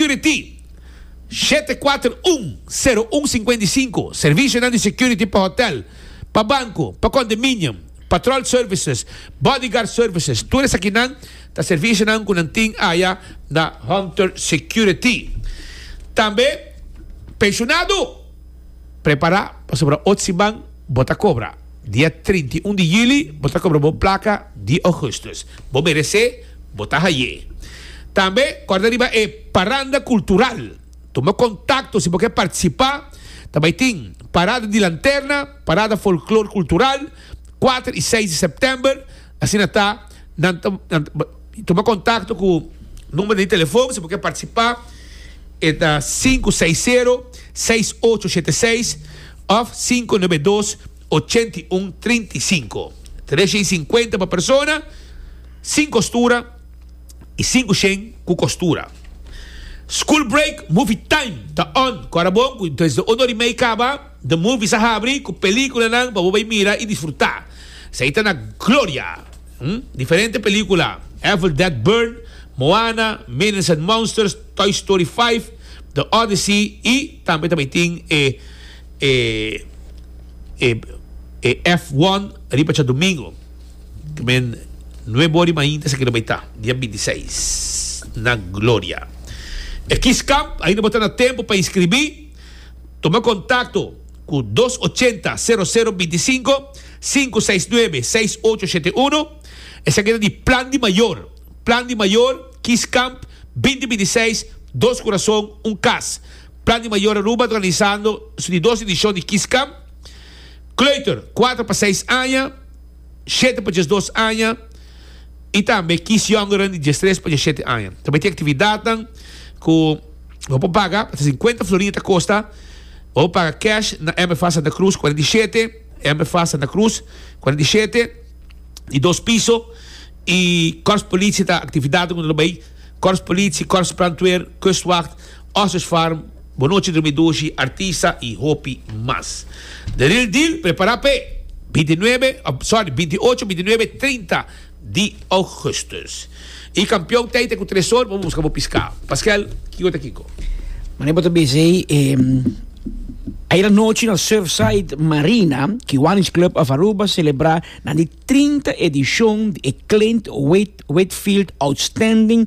Security, shete kuater un, sero un singkuenta i sinku, Servisionan di security pa hotel, pa banku, pa kondominium, patrol services, bodyguard services, tur esakinan ta servisionan ku nan tin aya na Hunter Security. Tambe penshunado prepará pasobra ot siman bo ta kobra. Dia trinta i un di yuli bo ta kobra bo plaka di ougustus. Bo meresé. Bo ta haye. Tambe corda riba e Paranda Cultural. Tuma contacto si bo ke participa. Ta bay tin Parada di Lanterna, Parada Folklor Cultural, cuater y seis di september. Asina ta nan ta nan ta tuma contacto cu number di telefon si bo ke participa e ta sinku seis sero, seis ocho shete seis of sinku nebe dos, ochenta i un, trinta i sinku. Tresha i sinkuenta pa persona. Sin kostura i sin kushen ku kostura. School break, movie time ta on. Ku ora bon ku desde unu ora i mei kaba, de movies a habri ku pelikulanan pa bo bai mira i disfrutá. Esei ta na gloria! Diferente pelikula, Evil Dead Burn, Moana, Minions and Monsters, Toy Story vijf, The Odyssey i tambe ta bai tin e e e e F one riba djadumingu. Amen. Nuebe ora di mainta esaki lo bay ta, dia binti i seis, na Gloria. E Kids Camp, ainda bo ta na tempu pa inskribí, tuma kontakto ku dos ochenta, sero sero binti i sinku, sinku seis nuebe, seis ocho shete uno. Esaki ta di Plan di Mayor. Plan di Mayor, Kids Camp, binti binti i seis, Dos Kurason, Un Kas. Plan di Mayor Aruba ta organisando su di dos edishon di Kids Camp. Kleuter, kuater pa seis aña, shete pa diesdos aña, i tambe kiesjongeren di diestres pa diesshete aña. Ta mete aktividatnan ku bo por paga, ta sinkuenta florin ta kosta, bo por paga kèsh na MFA Santa Cruz kuadra di shete, MFA Santa Cruz kuadra di shete, di dos piso, i Kòrspolisie ta aktividatnan ku nan lo bai, Kòrspolisie, Kòrsbrandweer, Kustwacht. Ostrich Farm, Bo Nochi Drumi Dushi, Artisa y hopi mas. The Real Deal prepara pe binti nuebe, sorry, binti ocho, binti nuebe y trinta di Augustus. Y Campeon Teite cu Tresor bo por busca bo piscao. Pasquel, kico ta kico? Mane bo ta bisa ei Ayer anochi na Surfside Marina, Kiwanis Club of Aruba celebra nan di trinta edicion di e Clint Whitfield Outstanding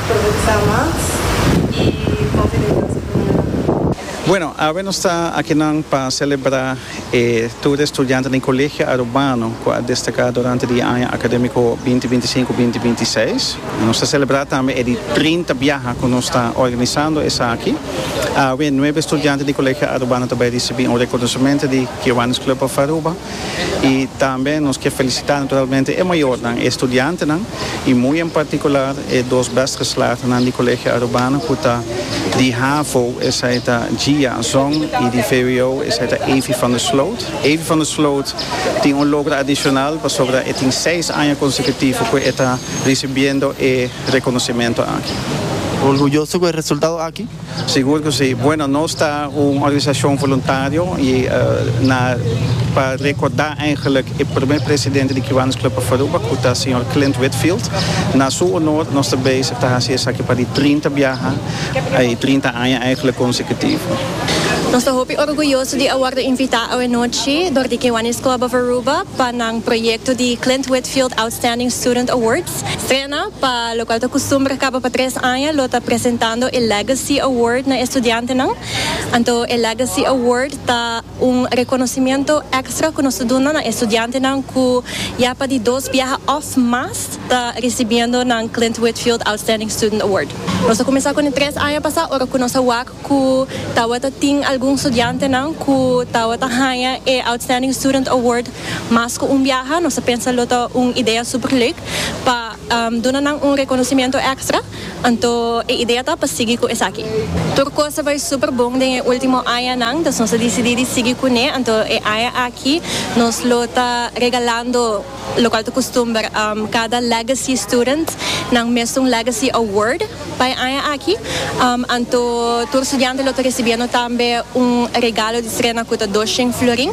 Progresá mas i hopi den nan sekundaria. Bueno, awe nos ta akinan pa selebrá e tur di estudiantenan di Colegio Arubano cu a destaká durante di e aña académico binti binti i sinku, binti binti i seis. Nos ta selebrá tambe e di trinta biaha cu nos ta organisando esaki. Awe nuebe estudiante di Colegio Arubano ta bai risibí un rekonosementu di Kiwanis Club of Aruba. Y tambe nos ke felicita naturalmente e mayornan, e estudiantenan y muy en particular e dos best geslaagdenan di Colegio Arubana cu ta di havo, esai ta Gia Zong, y di vwo, esai ta Avy van der Sloot. Avy van der Sloot tin un logro adicional pasobra e tin seis aña consecutivo cu e ta ricibiendo e reconocimento aki. Orgulloso cu e resultado aki? Sigur cu si. Bueno, nos ta un organisacion voluntario y na pa recorda eigenlijk e primer presidente di Cubanos Club of Aruba cu ta señor Clint Whitfield. Na su honor nos ta bezig ta haci esaki pa di trinta biaha y trinta aña eigenlijk consecutivo. Nos ta hopi orguyoso di a wordo invita awe nochi door di Kiwanis Club of Aruba pa nan proyecto di Clint Whitfield Outstanding Student Awards. Trena pa lokual ta kustumber kaba pa tres aña lo ta presentando e Legacy Award na e studiantenan. Anto e Legacy Award ta un rekonosementu èkstra ku nos ta duna na e studiantenan ku ya pa di dos biaha òf mas ta risibiendo nan Clint Whitfield Outstanding Student Award. Nos a kuminsá ku nan tres aña pasá ora ku nos a wak ku tabata tin algun studiantenan ku tabata haña e Outstanding Student Award mas ku un biaha. Nos ta pensa lo ta un idea super leuk pa duna nan un rekonosimiento ekstra. Anto e idea ta pa sigui ku esaki. Tur kos a bai super bon den e ultimo añanan, dus nos a disidí di sigui kuné. Anto e aña aki nos lo ta regalando. lokual ta kustumber kada Legacy Student nan mester un Legacy Award pa e aña aki, anto tur studiante lo ta risibiendo tambe un regalo di trena ku ta dos shen florin.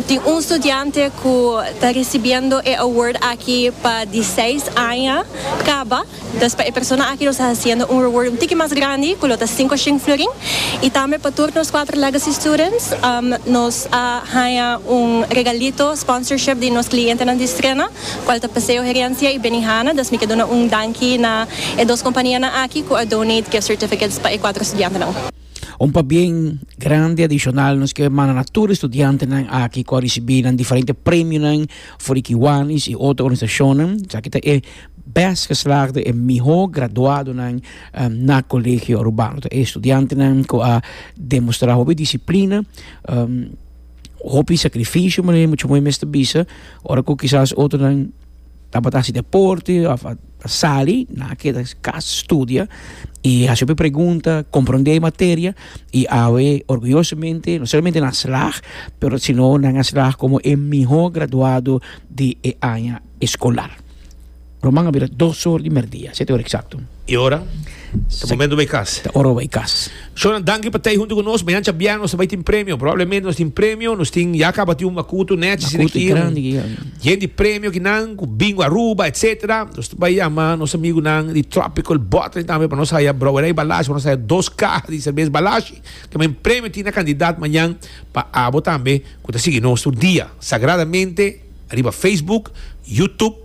Tin un studiante ku ta risibiendo e award aki pa di seis aña kaba. Entonces pa e persona aki nos ta haciendo un reward un tiki mas grandi cu lo ta cinco shing florin y tambe pa tur nos cuatro Legacy Students nos a haya un regalito sponsorship di nos clientenan di Strena cual ta Paseo Herencia y Benihana dus mi ke duna un danki na e dos companianan aki cu a donate gift certificates pa e cuatro studiantenan. Un pabien grandi adicional nos kier manda na tur e studiantenan aki cu a ricibi nan diferente premionan for di Kiwanis y otro organisacionnan. Esaki ta e. Best geslaagde e mihó graduadonan na Colegio Urbano ta e studiantenan ku a demostrá hopi disiplina, hopi sakrifisio manera mucha moe mester bisa, ora ku kisas otronan tabata hasi deporte òf a sali nan a keda kas studia i hasi hopi pregunta, komprondé e materia i awe orguyosomente no solamente nan a slaag pero sino nan a slaag komo e mihó graduado di e aña. eskolar. Roman a bira dos or di merdia, sete or eksakto. E ora ta momentu bai kas. Ta ora bai kas. Shona, danki pa tei huntu ku nos. Mañancha bia nos ta bai tin premio. Probablemente nos tin premio. Nos tin, ya a kaba tin un bakutu nechi si den kio. Yen di premio ki nan ku bingo Aruba, etsetera. Nos ta bai yama nos amigunan di Tropical Bottling tambe pa nos haya Brouwerij Balashi, pa nos haya dos kaha di serbes Balashi. Ke men premio tin na kandidat mañan pa abo tambe ku ta sigui nos tur dia. Sagradamente. riba Facebook, YouTube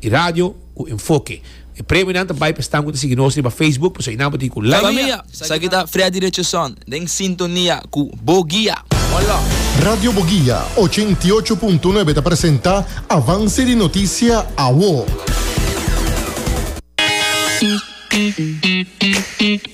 y radio cu Enfoke. E premionan ta bay pa esnan cu ta sigui nos riba Facebook, pasobra y nan bo tin cu Love Mia! Esaki ta Freddy Richardson den sintonia cu Bo Guia. Hola! Radio Bo Guia ocho i ocho punto nuebe ta presenta Avance di Noticia Awo.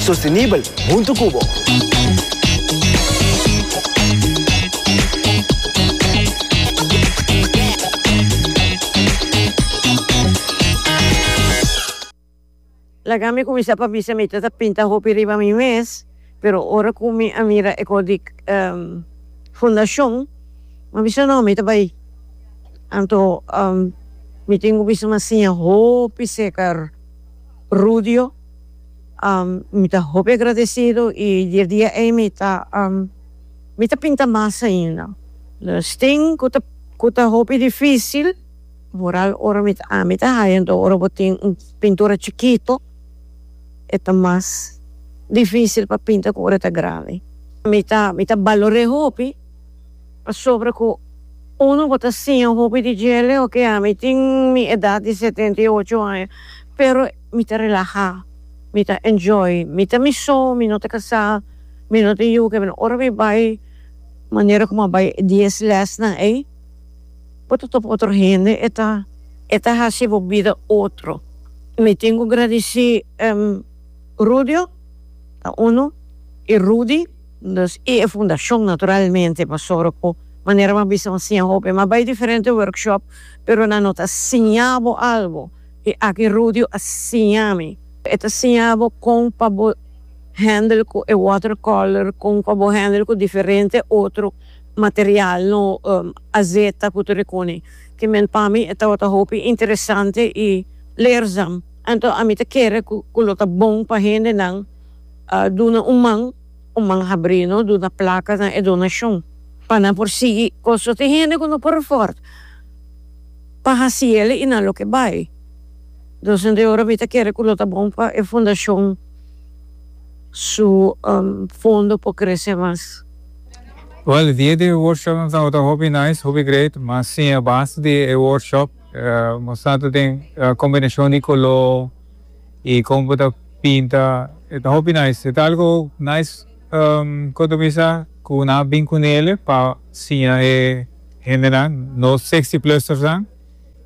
Sostenibel huntu cu bo. Laga mi cuminsa pa bisa mi ta ta pinta hopi riba mi mes, pero ora cu mi a mira e cos di fundacion mi a bisa no mi ta bay anto mi tin cu bisa mi a siña hopi secar rudio. Mi ta hopi agradecido y di e dia ey mi ta mi ta pinta mas ainda. Los tin cu ta cu ta hopi dificil vooral ora mi ta ami ta haya enton ora bo tin un pintura chikito e ta mas dificil pa pinta cu ora e ta grandi. Mi ta mi ta balore hopi pasobra cu uno bo ta siña hopi di djele oke ami tin mi edad di setenta y ocho aña pero. Mi ta relaha, mi ta enjoy, mi ta mi so, mi no ta casá, mi no tin yu ke mi ora mi bai manera como a bai e dies lesnan ey bo ta topa otro hende e ta e ta haci bo bida otro. Mi tin cu gradici Rudio ta uno y Rudy dus y e fundacion naturalmente pasobra cu manera mi a bisa bo a siña hopi mi a bai diferente workshop pero nan no ta siña bo algo. E aki Rudio a siña mi. E ta siña bo kon pa bo handle ku e water color, kon pa bo handle ku diferente otro material no, azeta ku tur e kuni. Tin men pa mi e tabata hopi interesante i leerzam. Anto ami ta kere ku lo ta bon pa hendenan duna un man, un man habri no, duna plaka na e donashon pa nan por sigui konstruti. Hende ku no por afòrda. pa haci el y nan lo ke bay. Entonces de ora mi ta kere ku lo ta bon pa e fundacion su fondo por crece mas. Well dia di workshop nan ta ota hopi nice, hopi great, mas sin e base di e workshop nos sa ta den combinacion di color y con bo ta pinta e ta hopi nice e ta algo nice. Compromisá cu nan a bin cu Nele pa siña e hendenan nos sexy plus'ernan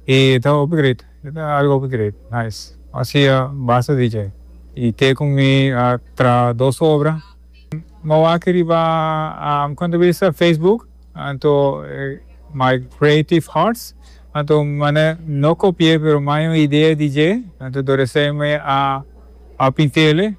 y ta upgrade, ta algo upgrade, nice. Así a basta DJ y te cu mi a traha dos obra. Mo wak riba Compromisá Facebook anto My Creative Hearts anto mane no copi'é pero maña un idea DJ anto door esey me a pint'ele.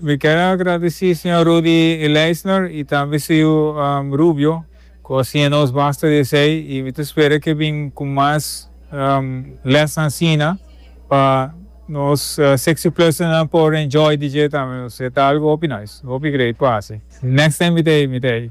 Mi ker a agradesí señor Rudy Leisner i tambe su yu Rubio ku a siña nos basta di esei i mi ta spera ke bin ku mas lèsnan asina pa nos Sexyplusenan por enjoy di dje tambe. Nos e ta algu hopi nice. Hopi great pa hasi. Next time mi ta ei, mi ta ei.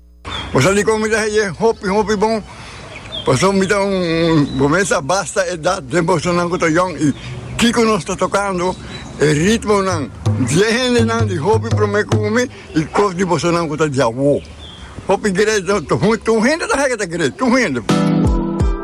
Bo sa di kon mi ta heye hopi hopi bon, pasobra mi ta un gomen sa basta edat den bosonan ku ta yòn i kiko nos ta tokando e ritmonan. Die hendenan di hopi promé ku mi i kos di bosonan ku ta di awó. Hopi gredo, tur hende ta haya ke ta gredo, tur hende.